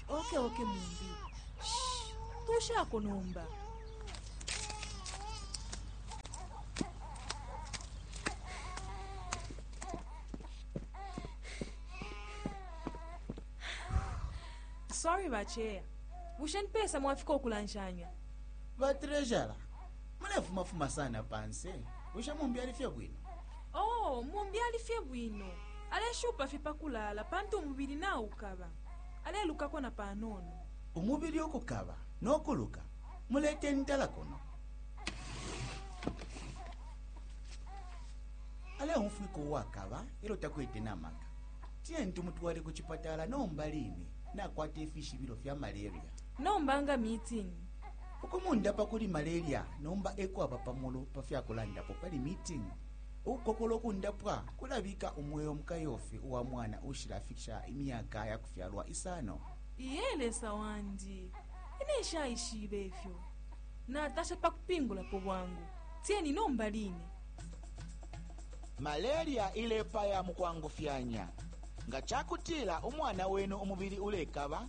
oke oke mumbi tushako nomba sorry bacheya bushe nipesa mwafika okulanshanya batrejara munefumafuma sana panse bushe mumbi ali fye bwino Oo, mumbi ali fye bwino, aleshupa fye pa kulaala pantu umubili naukaba. Alelukako na panono. Umubili ukukaba no kuluka, mulete intala kuno. Aleumfwika uwakaba e lyo takwete na maka. Tiyeni tumutwale ku cipatala nomba line, nakwata ifishibilo fya malaria. Nomba nga mitini. Ukumundapa kuli malaria nomba e kwaba pa mulu pa fya kulandapo pali Meeting. Ukukokola ukundapwa kulabika umweo mu kayofi uwa mwana uushilafikisha imyaka ya kufyalwa isano. Iye Lesa wandi! Ine nshaishibe ifyo. Natasha pa kupingulapo bwangu. Tieni nomba line! Malaria ilepaya mu kwangufyanya. Nga ca kutila umwana wenu umubili ulekaba,